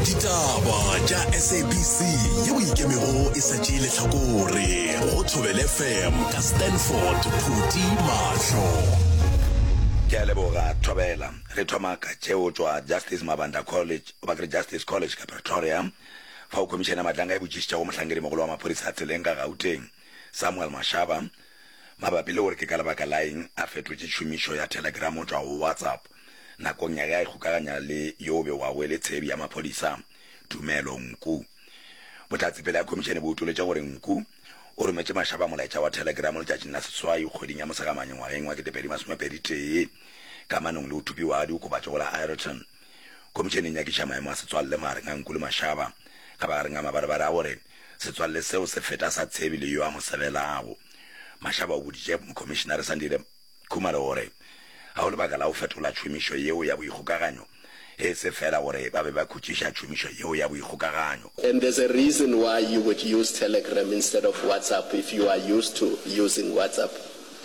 ditaba tša sabc ye o ikemego e sa tšee letlhakore go thobele fm ka stanford phuti mahlo ke a leboga thobela re thoma ka tšeo tšwa justice mabanda college goba kere justice college ka pretoria fao khomišene ya matlanga e botšišitšago mohlankedi mogolo wa maphodisa a tseleng ka gauteng samuel mashaba mabapi le gore ke ka lebaka laeng a fetotše tšhomišo ya telegram go tšwa go whatsapp nakong ya ge a ikgokaganya le yo o begwago e le tshebi ya maphodisa Tumelo Nku. Bohlatse pele ga khomišene bo utoletše gore Nku o rometše Mashaba molaetša wa thelegeramo letšatšing la seswai kgweding ya Mosegamane ngwageng wa 2021 ka manong le go thupiwa ga diokobatšo go la Ireton. Khomišene e nyakiša maemo a setswalle magareng ga Nku le Mashaba ka magareng ga mabarebare a gore setswalle seo se feta sa tshebi le yo a mo sebelago. Mashaba o boditše Mokhomišenare Sandile. Khumalo o re, Ga go lebaka la go fetola tšhomišo yeo ya boikgokaganyo, e se feela gore ba be ba khutšiša tšhomišo yeo ya boikgokaganyo. And there's a reason why you would use Telegram instead of WhatsApp if you are used to using WhatsApp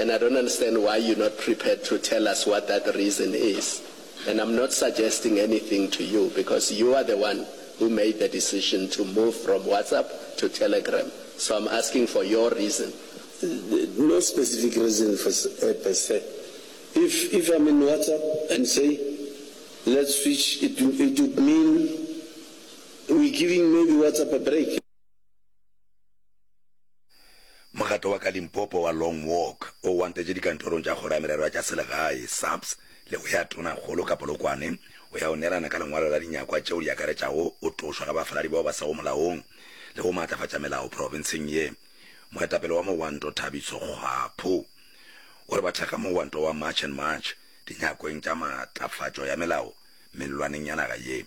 and I don't understand why you're not prepared to tell us what that reason is and I'm not suggesting anything to you because you are the one who made the decision to move from WhatsApp to Telegram so I'm asking for your reason No specific reason for a per se. If if I'm in WhatsApp and say let's switch it it would mean we're giving maybe WhatsApp a break. Mokgatlo wa ka Limpopo wa Long Walk o wantetše dikantorong tša Kgoro ya Merero ya tša Selegae, SAPS, le go ya Tonakgolo ka Polokwane go ya go neelana ka lengwalo la dinyakwa tšeo di akaretšago go tlošwa ga bafaladi bao ba sego molaong le go maatlafatša melao profenseng ye. Moetapele wa Mowanto Thabiso Kgwapho o re ba thekga Mowanto wa March and March dinyakong tša matlafatšo ya melao mellwaneng ya naga ye.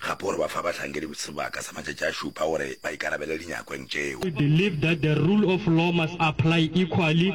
Gape o re ba fa bahlankedi sebaka sa matšatši a šupa gore ba ikarabele dinyakong tšeo. We believe that the rule of law must apply equally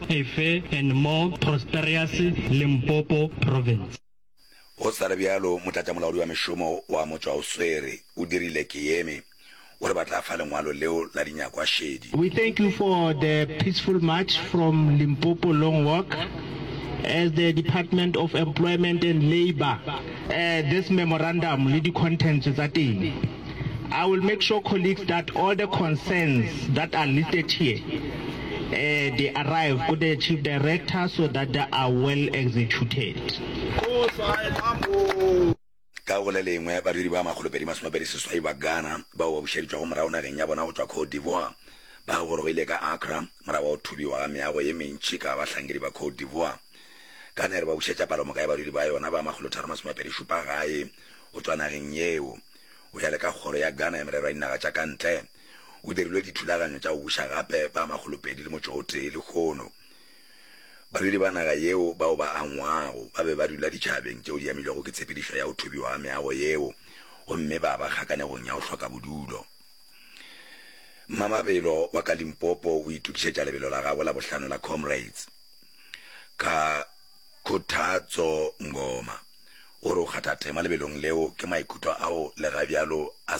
a fair and more prosperous Limpopo Province. Go sa le bjalo, motlatšamolaodi wa mešomo wa motšwaoswere o dirile ke yeme gore ba tla fa lengwalo leo la dinyakwa šedi. We thank you for the peaceful march from Limpopo Long Walk. As the Department of Employment and Labour, this memorandum le di contents tsa teng. I will make sure colleagues that all the concerns that are listed here uh, they arrive to the chief director so that they are well executed. ka go le lengwe badiri ba makgolopedi masomapedi seswai ba ghana bao ba bušeditšwago morago nageng ya bona go tšwa cote d'ivoire ba gorogile ka acra morago wa go thubiwa ga meago ye mentši ka bahlankedi ba cote d'ivoire ka nere ba bušetša palomoka ya badiri ba yona ba makgolotharo masomapedi šupa gae o tšwa nageng yeo, o ya le ka Kgoro ya Ghana ya Merero ya Dinaga tša ka Ntle, o dirilwe dithulaganyo tša go buša gape ba makgolopedi le motšo o tee lehono. Badudi ba naga yeo bao ba angwago ba be ba dula ditšhabeng tšeo di amilwego ke tshepedišo ya go thubiwa ga meago yeo gomme ba ba kgakanegong ya go hloka bodulo. Mmamabelo wa ka Limpopo o itokišetša lebelo la gagwe la bohlano la Comrades ka Khothatso Ngoma o re o kgatha tema lebelong leo ke maikutlo ao lega bjalo a